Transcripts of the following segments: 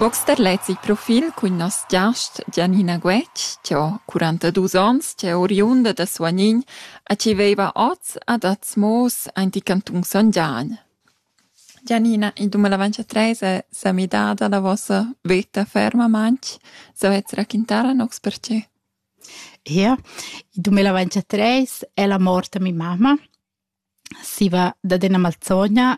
Box da lez il profil cun nos giast Gianina Guetg, chi ho quarantaduos ons, chi è oriunda da Suagnin e chi veiva oz ad Azmoos aint il cantun Son Gian. Gianina, in dumilavantatres es sa midada la vossa veta fermamaing. Savez raquintar a noss perche? Ia, il 2023 è la mort da mia mamma. Si va dad üna malzogna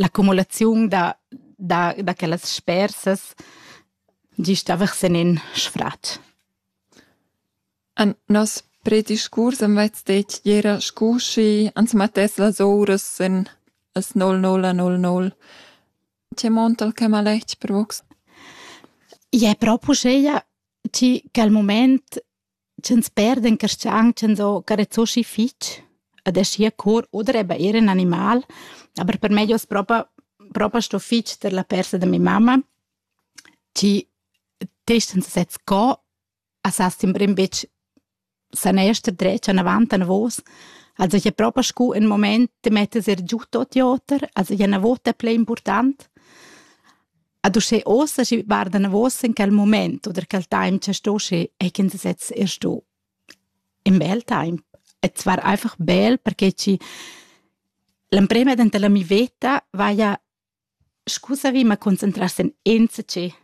L'accumulaziun da da da quellas spersas gist avessen in sfratg. En nos prediscurs am vets detg ch'era scu schi ans mettess las ouras en las nol nol nol nol. Che montal che maletg per vos? Ie propo scheia, chi cha'l mument Ch'ins perda in carstgaun ch'ins ho carezoschi fich ed aschia cur oder eben eir ün animal, aber per me hoz propa propa sto fich tar la persa da mia mamma, chi testa ins sez co a sa sembra ün bich san ester dretg anavant anavos, also ich ha propa scu ün mumaint da metter er giù tuot i oter, also i ha 'na vota plü important. Ad uschè ossa schi varda navos in quel moment oder quel time che sto schi e kin sez er sto. In bel time. Et war einfach bel perché ci l'emprema dent la mi veta va ja scusavi ma concentrarsi in enzace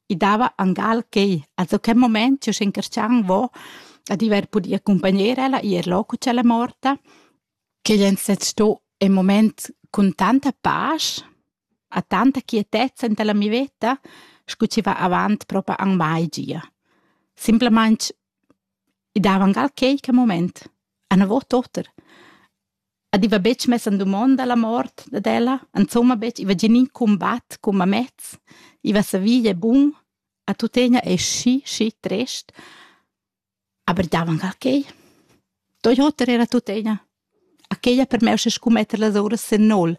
i dava angal che also quel moment io schinkercian vo a diver pudi accompagnare ella ir loco c'è la morta che jen sez sto in moment con tanta pace ha tanta quietezza enta la mi veta, scu chi va avant propa ün mai gia. Simplamaing i dava angal quaique mumaint, ün vot oter. Ed i va betg mess in dumonda la mort dad ella, insomma betg, i va gnir ün cumbat cum amez, i va savir gie bun e tuttegna es schi, schi trist. Aber davanc a quei. Doi oter era tuttina. A quei ha permess scu metter las uras sin nol.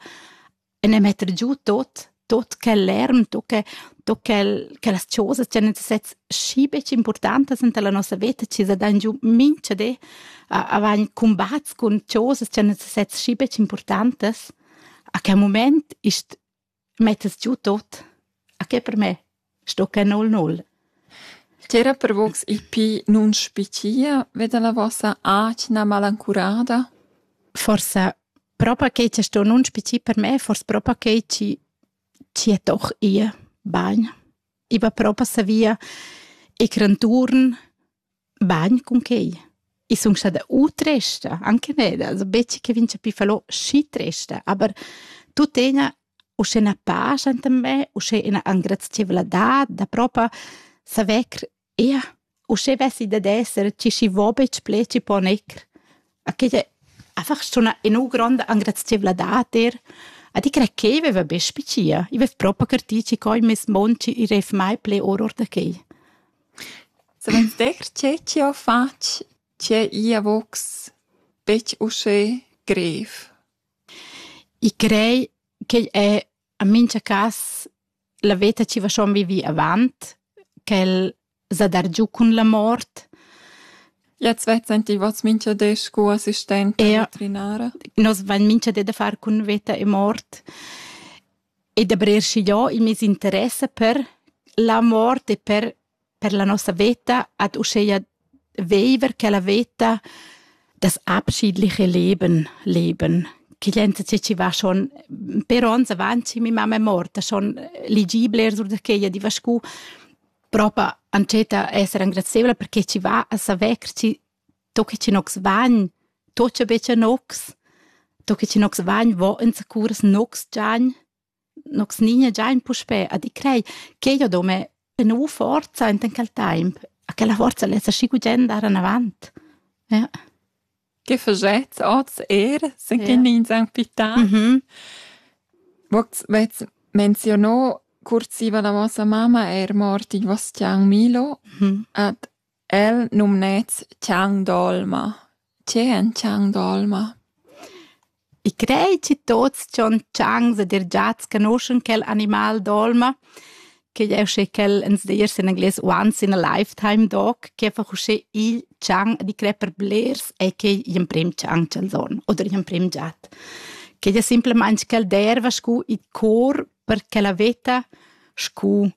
E ne metter giu tot, tot quel lärm, tot che, tot quel, quellas chosas che ne sez schi betg importantas enta la nossa veta, chi sa dan giu mincha di a, a vagn cumbats cun chosas che ne sez schi betg importantas. A quel moment ist Mettas giu tot? A che per me sto que null null. Tera per vox il pli nun spitia veda la vossa atgna malancurada? Forsa propa che ci sto nun spici per me, forse propa che ci ci è doch ihr bagn. I va propa savia e cranturn bagn cun quei. I sun stada u tresta, anche neda, also betg che vince più falò schi tresta, aber tuttegna uschè na pascha enta me, uschè ina angrazieveladad da propa saver ia, uschè vessi da d'esser chi schi vo betg ple, chi po necr. A che è einfach schon ina gronda angrazieveladad er, a di cre ch'ei veva be spicia, i vef propa cartì chi coi mes monci i ref mai ple or or da quei. Suvenster tgê chi ho fatg tgê i avocs betg uschè grev? I crei ch'igl è en mincha cas la veta chi vaschond vivì avant ch'el s'ha dargiù cun la mort. Jetzt vezzain ti vos mincha di scu assistenta veterinara? Nos vain mincha di da far cun veta e mort. e da brer schigliò il meis interess per la mort e per per la nossa veta ad uscheia veiver quella veta das abschiedliche Leben leben che glienza che chi va schon per ons avanti mi mamma è morta schon ligibile er sur da quella di va scu propa antscheta esser engrazieula perché chi va a saver chi to che chi nocs vagn, to cha betcha nocs, to che chi nocs vagn, vo insacuras nocs giagn, nocs nigna giagn puspè a di crei che io do me e nu forza enten quel temp, a quella forza lessa schi gugent andare in avant. Ja. Che faget oz er, se che ja. nins han pità. Mhm. Vox vez menzionò cursiva la vostra mamma er mort in Vostian Milo mhm. ad El numnets Chang d'olma. Tge è in Chang d'olma? I crei chi tuots dschon Changs ed eir giats canoschan quel animal d'olma, ch'igl è uschè ch'el ins dirs in anglais once in a lifetime dog, chi ha fach uschè igl Chang e di crer per blers e che igl emprem Chang ch'els hon oder igl emprem giat. Ch'igl è simplamaing ch'el derva scu il cor per ch'ella vetta scu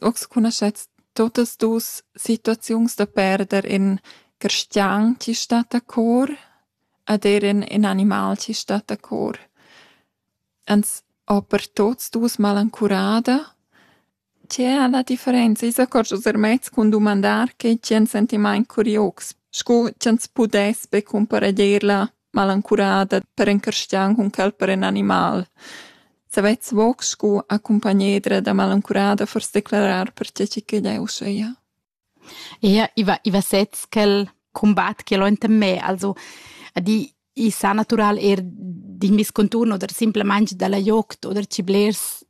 Ox cunoschets tuottas duos situaziuns da perder ün cristian chi sta da cor ed eir ün ün animal chi sta da cor. Ans ho per tuots duos malancurada. Tge è la differenza? I s'accordscha er mez cun dumandar che tgi ans sentimaint curiox, scu ch'ans pudess be cumpareglier la malancurada per encarschian cun quel per in animal. Savets voc scu accumpagnedra da malancurada fors declarar per tge che jeu seia. Ia, i va, i va sez quel combat che l'ho enta me, also di i sa natural er d'in vis conturn oder simplemente dalla joct oder ci blers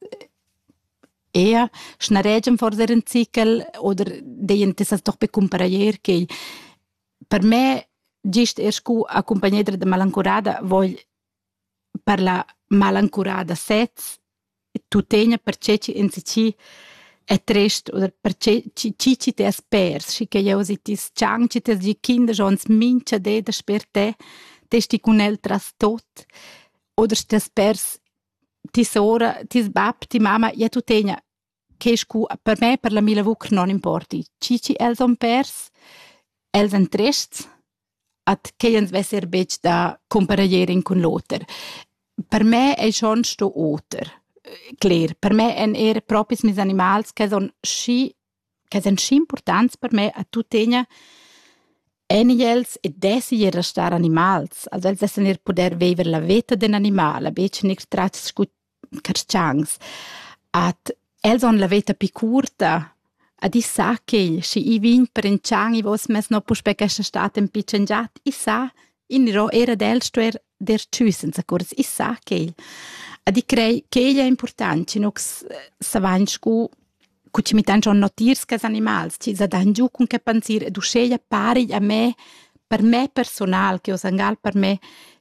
ea schnaregem fors er in zichel oder deien tessas doch be cumparair che Per me gist er scu accumpagnedra da malancurada vogl parlar malancurada sez e tuttegna per che chi enzatgi è trist oder per che chi chi chi t'es pers, schi che jeu si ti s-chang, chi t'es gi kinder schon ans mincha di dasper te, te sti cun el tras tot oder t'es pers ti sora, ti s-bab, ti mama, ja tuttegna che scu per me per la mia lavur non importi. Chi chi els han pers, els han trests, ad quei ans vesser betg da compareglier in cun l'oter. Per me ei schon sto oter, cler. Per me èn er propis mes animals che son schi che son schi importants per me a tuttegna en els e dessi er restar animals. Also els dessan er puder viver la veta d'in animal, aber ich nichts tratts scu carstgauns. Ad els on la veta pi curta, ad i sa ch'igl, schi i vign prendschan i vos mez no puspè questa stat en pitschen giat, i sa, in iro era d'el stuer der tschü senza curs, i sa ch'igl. Ad i crei ch'igl è important, schi nus savagn scu cu ci mi tengion notiers che animals ti sa dan giu cun che pensir ed uscheia pari a me per me personal che o sangal per me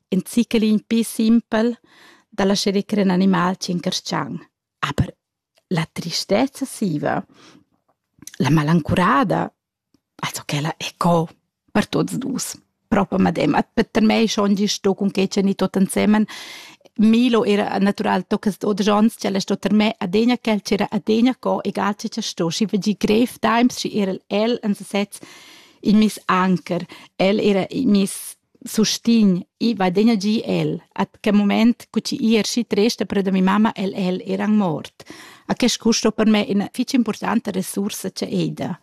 in zichelin pi simpel da lascere crer in animal ci incarschan. Aber la tristezza siva, la malancurada E co ch'ella è co, per tuots dus. Propa medemma. Per mei schon gist sto cun quei tscheni tot ensemen. Milo era natural tocca sto da Jons, ch'ella sto ter me adegna quel ch'era adegna co, egal che cha sto, schi vegi grev times, schi era el en sesez il mis anker. El era il mis sustign, i va degna gi el, a che moment cu chi i erschi tresta per da mi mamma el el eran mort. A quest custo per me ina fitg importanta resursa che eda.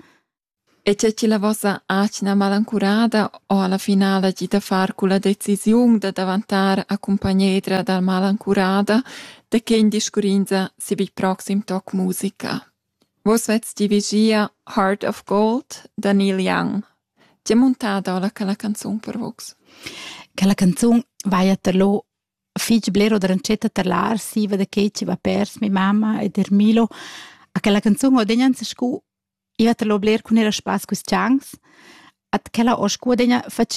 E c'è chi la vossa atgna malancurada o alla finale gi da far cu la decisiun da davantar a cumpagnedra dal malancurada de che in discurinza si bi proxim toc musica? Vus vets dirigia Heart of Gold da Neil Young. Ti muntada ora quella canzun per vus? Quella canzun vaia terlo fich blero da rancetta tar l'arsiva da che ci va pers mi mamma ed er Milo. A quella canzun ho degnan se scu iva terlo bler cun era spass quis chans. At quella ho scu degna fach